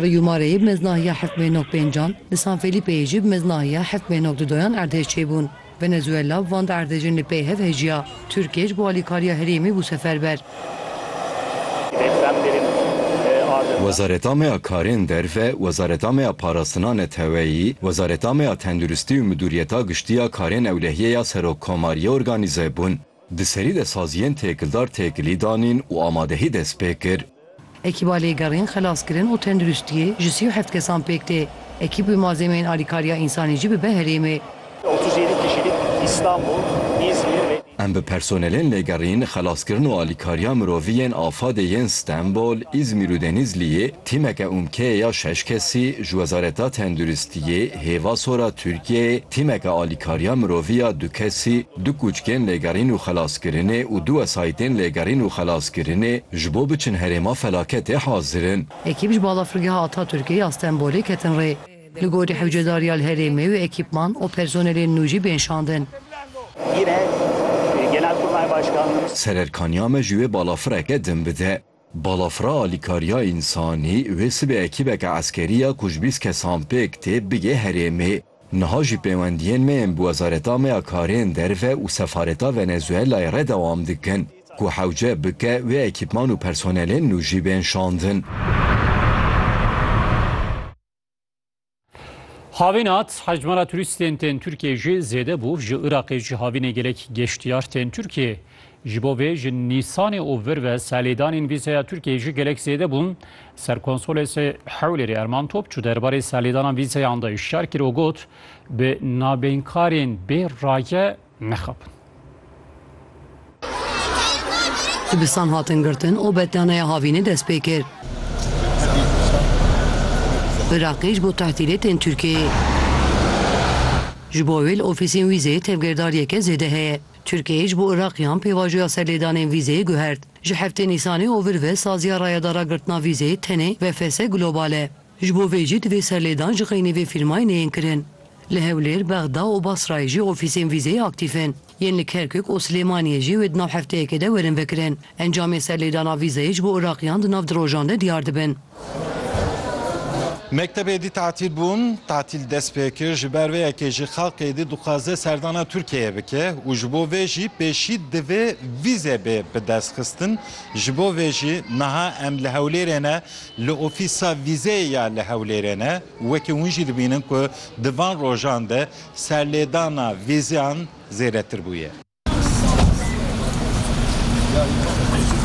Riyûmareyê bi meznahiya hifmê nok pêncan, li San Felîpeyê jî bi meznahiya hifmê nok dudoyan erdhêj çêbûn. Venezuela bi van du erdhejên li pey hev hêjiya. Tirkiye ji bo alîkariya herêmê bû seferber. Wezaretamea Karên Derve, Wezaretamea Parastina Neteweyî, Wezaretamea Tenduristî û Midûriyeta Giştî ya Karên Ewlehîye ya Serokkomariyê organîze bûn. Di serî de saziyên têkildar têkilî danîn û amadehî dest pê kir. Ekîba Lêgerîn, Xelaskirin û Tenduristiyê ji sî û heft kesan pêk tê. Ekîb wê malzemeyên alîkariya însanî jî bibe herêmê. Em bi personelên Lêgerîn, Xelaskirin û Alîkariya Mirovî yên AFAD'ê yên Stenbol, Îzmîr û Denîzliyê, tîmeke ûmkeyê ya şeş kesî, ji Wezareta Tenduristiyê, Hêva Sor a Tirkiyeyê, tîmeke alîkariya mirovî ya du kesî, Du kûçkên lêgerîn û xelaskirinê û du wesayîtên lêgerîn û xelaskirinê ji bo biçin herêma felaketê hazir in. Ekîp ji balafirgeha Atatürkê ya Stenbolê ketin rê. Li gorî hewcedarî ya li herêmê wê ekîpman û personelên nû jî bên şandin. Sererkaniya me ji wê balafireke din bide. Balafira Alîkariya Însanî, wê sibê ekîbeke eskerî ya ku ji bîst kesan pêk tê, bigê herêmê. Niha jî pêwendiyên me yên bi wezareta me ya karên derve û sefareta Venezuelayê re dewam dikin ku hewce bike wê ekîpman û personelên nû jî bên şandin. Havîn hat hecmara turîstên tên Tirkiyeyê jî zêde bû. Ji Iraqê jî havînê gelek geştiyar tên Tirkiyeyê. Ji bo vê ji Nîsanê û vir ve salêdanên vîzeya Tirkiyeyê jî gelek zêde bûn. Serkonsolê Hewlêrê Erman Topçu derbarê salêdana vîzeyan de hişyar kir û got, Bi nabênkarên bê raye nexapin. Dibistan hatin girtin û betnaneya havînê dest pê kir. Iraqê ji bo tehdîdê tên Tirkiyeyê. Ji bo wê li ofîsên wîzeyê tevgirdariyeke zêde heye. Tirkiyeyê ji bo Iraqiyan pêvajoya serlêdanên vîzeyê guhert. Ji heftê Nîsanê ovir ve saziya rayadara girtina vîzeyê tenê VFS Global e. Ji bo vê jî divê serlêdan ji xeynê vê fîrmayînê yên kirin. Li Hewlêr, Bexda û Basrayê jî ofîsên vîzeyê aktîf in. Yên li Kerkûk û Silêmaniyê jî wê di nav hefteyekê de werin vekirin. Encamên serlêdana vîzeyê ji bo Iraqîyan di nav du rojan de diyar dibin. Mekteb êdî tatîl bûn. Tatîl dest pê kir. Ji ber vê yekê jî xelk êdî dixwaze serdana Tirkiyeyê bike û ji bo vê jî pêşî divê vîze bê bidestxistin. Ji bo vê jî niha em li Hewlêrê ne Li ofîsa vîzeyê ya li Hewlêrê ne wekî hûn jî dibînin ku di van rojan de serlêdana vîzeyan zêdetir bûye.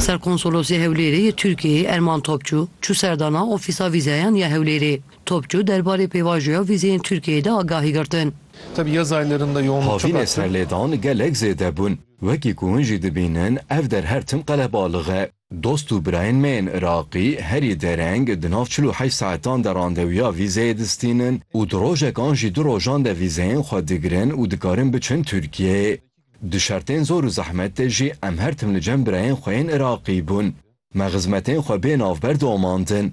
Serkonsolosê Hewlêrê yê Tirkiyeyê Erman Topçu çû serdana ofîsa vîzeyan ya Hewlêrê. Topçu derbarê pêvajoya vîzeyên Tirkiyeyê de agahî girtin. Havînê serlêdan gelek zêde bûn. Wekî ku hûn jî dibînin ev der her tim qelebalix e. Dost û birayên me yên Iraqî herî dereng di nav çil û heşt saetan de randewiya vîzeyê distînin û di rojek an jî du rojan de vîzeyên xwe digirin û dikarin biçin Tirkiyeyê. Di şertên zor û zehmet de jî em her tim li cem birayên xwe yên Iraqî bûn. Me xizmetên xwe bê navber domandin.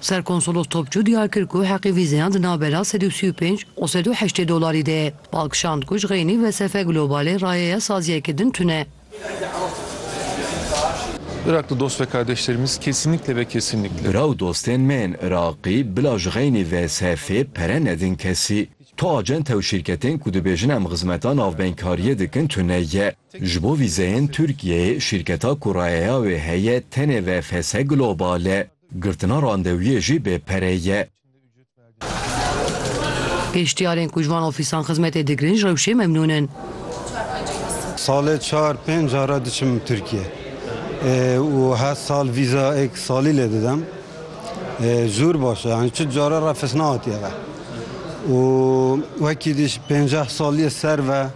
Serkonsolos Topçu diyar kir ku heqê vîzeyan di navbera sed û sî û pênc û sed û heştê dolarî de ye. Bal kişand ku ji xeynî Vesefe Globalê rayeya saziyeke din tune. Iraklı dost ve kardeşlerimiz kesinlikle ve kesinlikle. Bira û dostên me yên Iraqî bila ji xeynî Vesefê pere nedin kesî. Tu acente û şîrketên ku dibêjin em xizmeta navbengkariyê dikin tune ye. Ji bo vîzeyên Tirkiyeyê şîrketa ku rayeya wê heye tenê VFS Global e. Girtina randewiyê jî bê pere ye. Geştyarên ku ji van ofîsan xizmetê digirin ji rewşê memnûn in. Salê çar pênc cara diçim Tirkiye û her sal vîza ek salî lê didem. Zûr baş e yanî çi cara refes nehatiye ve û wekî dî ji pênceh saliyê ser ve.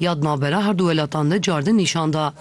ya di navbera her du welatan de cardin nîşan da.